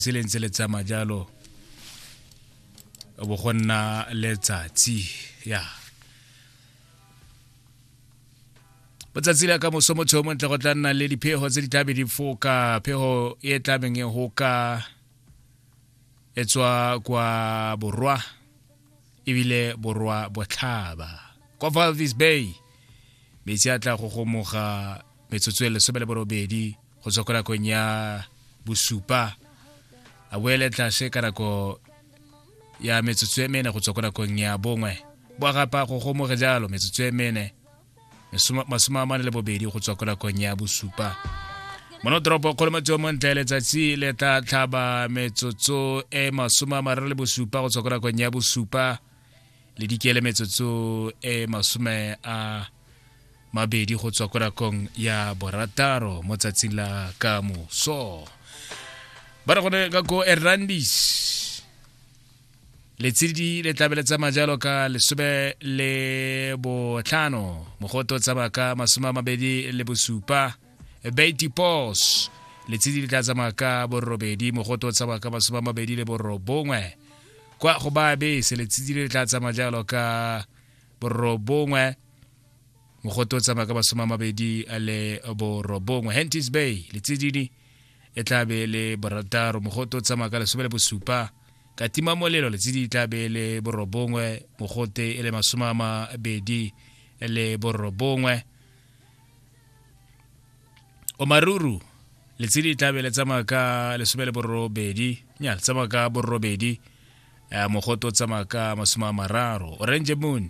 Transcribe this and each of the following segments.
tseleng tse le tsamaya jalo bo go nna letsatsi ya botsatsi la ka moso motho yo montle go tla nna le diphego tse di tlabe di foka phego e tlabeng e hoka e tswa kwa borwa ebile borwa botlhaba kwa valvis bay metsi a tla go gomoga metsotso e lesome le borobedi go tswa ko nakong ya bosupa a boele tlase ka nako ya metsotso e mene go tswa ko nakong ya bongwe boa gapa go gomoge jalo metsotso e mene masome a mane le bobedi go tswa ko nakong ya bosupa mono toropo kgolo motse o montle letsatsi le tla tlhaba metsotso e masome a mararo le bosupa go tswa ko nakong ya bosupa le dikele metsotso e masome a mabedi go tswa ko rakong ya borataro mo tsatsing la ka moso ba re gone ka ko erlandis letshedi le tlabe le tsamaya jalo ka lesome le botlhano mogoto tsamaya ka masome a mabedi le bosupa beity pos letshedi le tla tsamaya ka borobedi mogoto tsamaya ka masome a mabedi le borobongwe kwa go ba bese letshedi le tla tsamaya jalo ka borobongwe mogote o tsamaya ka masome a mabedi a le borobongwe hentis bay letsididi e tla be le borataro mogote o tsamaya ka lesome le bosupa ka tima molelo letsididi e tla be le borobongwe mogote e le masome a mabedi le borobongwe omaruru letshedi e tlabe le tsamaya ka lesome le borobedi nya le tsamaya ka borobedi um mogote o tsamaya ka masome a mararo orange moon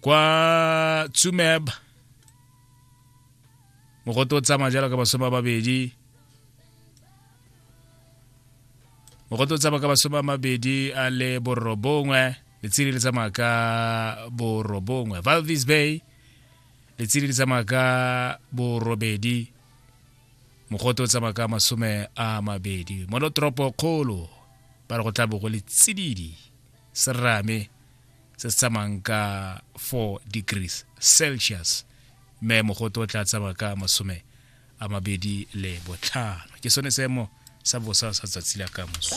kwa tsumeb mogote o tsamaya jalo ka masome a mabedi mogote o tsamaya ka masome a mabedi a le borobongwe letsedi le tsamaya ka borobongwe valvis bay letsedi le tsamaya ka borobedi mogote o tsamaya ka masome a mabedi monotoropo kgolo ba re go tla bo go le tsididi serame se se tsamayng ka 4 degrees celsius mme mogote o tla tsamaya ka masome a mabedi le botlhano ke sone seemo sa bosa sa tsatsi la ka moso